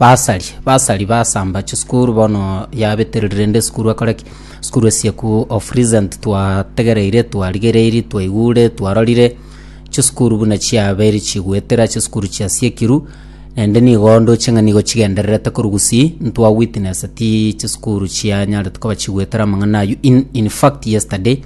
Basari, basari basamba chisukuru bono yabetereri rende esukuru akore ki? Sukuru esieku of recent twategereire, twarigereiri, twaigure, twarorire chisukuru buna chiaberi chigwetera chisukuru chiasiekirwe rende nigo ndoche ng'a nigo chigendererete korwa gusii ntwa witnesseti chisukuru chianyarete koba chigwetera amang'ana aywo in infact yesterday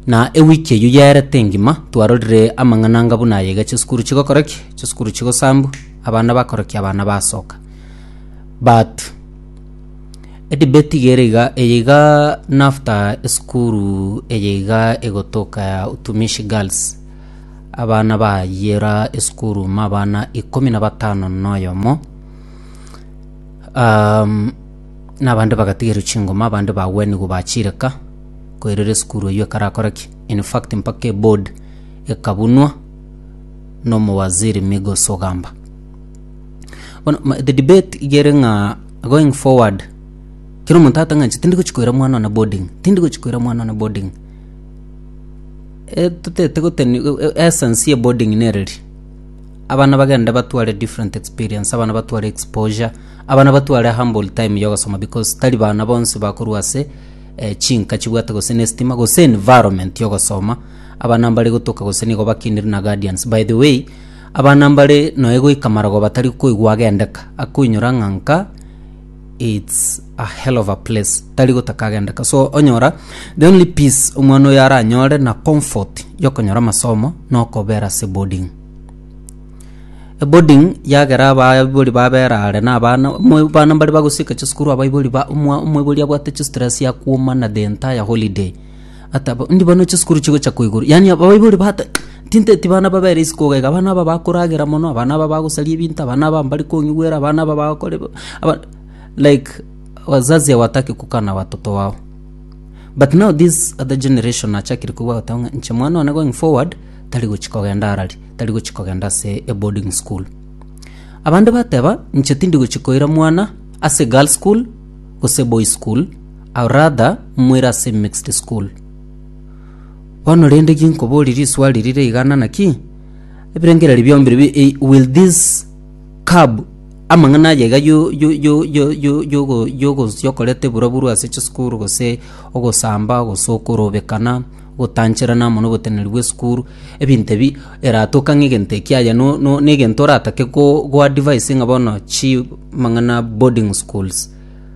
na ewiki eywo yaerete engima twarorire amang'ana anga buna aye iga chisukuru chigokora ki? Chisukuru chigosambwa. abana bakorokia abana basoka but edebate iga ere iga eye iga na after esukuru eye iga egotoka ya utumishi girls abana bayira esukuru ime abana ikomi na batano na oyomo um, na abande bagatigerwa chingoma abande bagwenigwa bachireka koirera esukuru eywo ekarakore ki in fact mpaka eboard ekabunwa nomowaziri Migos Ogamba. Bono ma- the debate igere ng'a going forward kero omonto atange ng'a tindi gochi koira mwana one boarding tindi gochi koira mwana one boarding etotete goteni e- e- essence ya boarding nere ri abana bagende batware different experience abana batware exposure abana batware humble time ya ogosoma because tari bana bonsi bakorwa ase eh, chinka chibwate gose na estima gose environment ya ogosoma Aba nambare gotoka gose nigo bakinire na guardians. By the way, aba nambare noe goika marogoba tari koigwa agendeka, akoinyora ng'a nka it's a hell of a place, tari gotaka agendeka. So onyora the only peace omwana oyo aranyore na comfort yokonyora amasomo nokobera ase boarding. Eboarding yagera abaibori babera are na abana, omwe bana mbare bagosieka chisukuru abaibori ba omwa omoibori abwate chistress akwomana the entire holiday. Ata bo- ndi bono chisukuru chigocha ko igoro yaani abaibori bata tinteti bana babere isiko iga iga abana aba bakoragera mono abana aba bagosaria ebinto abana aba mbari kong'igwera abana aba bagokora ebe aba like wazazi hawataki kukaa na watoto wao but now this other generation nachakire koigwa goteba ng'a inche mwana one going forward tari gochia kogenda arari tari gochia kogenda ase eboarding school abande bateba inche tindi gochia koira mwana ase girls school gose boys school I'll rather mwire ase mixed school. Bono rende ginkoborie riswali rire igana naki ebirengererio biombi ribi eh, will this cab amang'ana aya iga yo- yo- yo- yo- yo- yogo- yogosia okoreta eburaburu ase chisukuru gose ogosamba gose okorobekana ogotancherana amo na oboteneneri bwa esukuru ebinto ebi eratoke ang'e egento eki aye no- no- na egento oratake go- goadvise ng'a bono chimang'ana boarding schools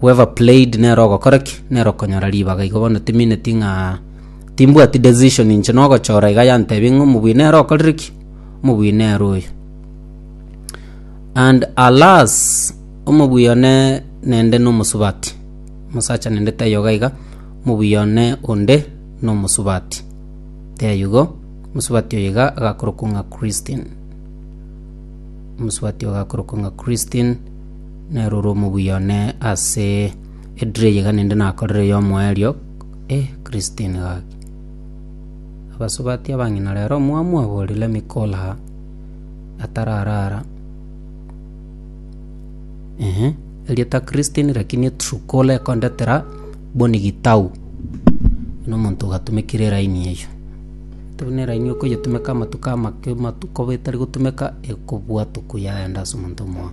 Whoever played nere ogokora ki? Nere okonyora ribaga. Igo bono timineti ng'a timbwati decision inche nogochora iga yantebia ng'a omobwine ere okorire ki? Omobwine ere oyo. And alas, omobwii one nende nomosubati. Omosacha nende taiyo iga iga, omobwii one onde nomosubati. Taiyo igo, omosubati oyo iga agakorokwa ng'a Christine. Omosubati oyo agakorokwa ng'a Christine. Nere ore omobuya one ase ediro eye iga ninde nakorire y'omoerio, eh Christine gaki. Abasubati abang'ina rero omwamu abori let me call her atararara, ehe erieta Christine lakini Truecaller ekondetera Bonny Gitau, buna omonto ogatumekire line eyio. Ase buna line eyio okoyetumeka amatuko amake amatuko etari gotumeka ekobua tuku yaenda ase omonto omoa.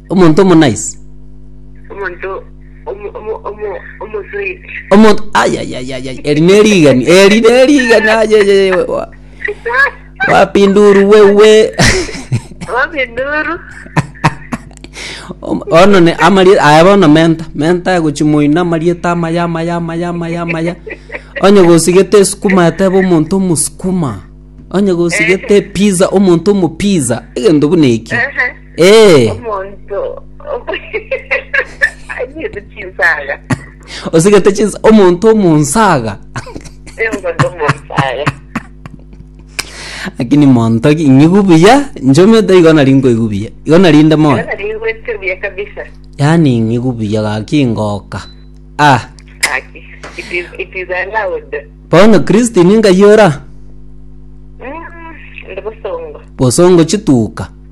Omonto omonaisi. omonto omo- omo- omo- omosoiti Omonto ayayayayay. Eri nerigani. Eri nerigani ayayayay. wa- Wapi nduru wewe? wapi nduru Om- ono ne amari aya bono menta menta egochimoina amarieta amaya amaya amaya amaya amaya onye gosigete esukuma etebe omonto omosukuma onye gosigete pizza omonto omopizza egento buna eki Ehe. Ee, Omonto anyete chinsaga. osigete chinsa omonto omonsaga. Omonto omonsaga. Lakini monto ki ng'igu buya, nchomete igo nari nkoigwa buya. Igo narinde moyo. Yona rigwete buya kabisa. Yaani ng'igu buya gaki ngoka. Ah, Aki. It is, it is allowed. bono Christine ngayora Mm, Ndi bosongo. bosongo chituka.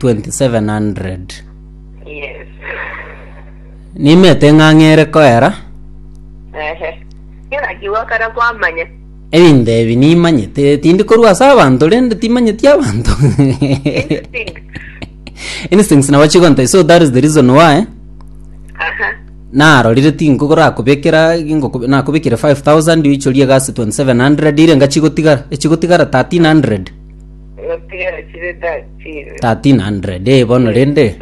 2700 Yes. nimete eng'ang'a ere koera Ehe. Kera kiwa kara kwamanya. ebinto ebi nimanyete tindi korwa ase abanto rende timanyeti abanto Instinct. instincts nabo chigontai so that is the reason why Aha. narorire tinkogorakobekera ngoko- nakobekire 5000 oichorie egasi 2700 ire ngachigotigara echigotigara 1300 1300 ee bono rende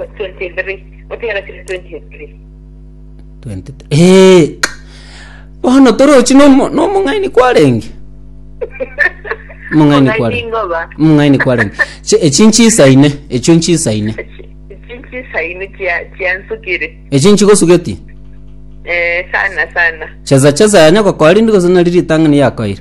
20 ee bono torochi nomo- nomong'aini kwarenge omong'aini kware Ingoba. omong'aini kwarenge Chi- echi nchisaine echio nchisaine Chinchisaini chia chiansukire. echi nchigosugeti Eh, sana sana. chesa chesa yanya gokoa rindi gose nari ritang'ani yakoire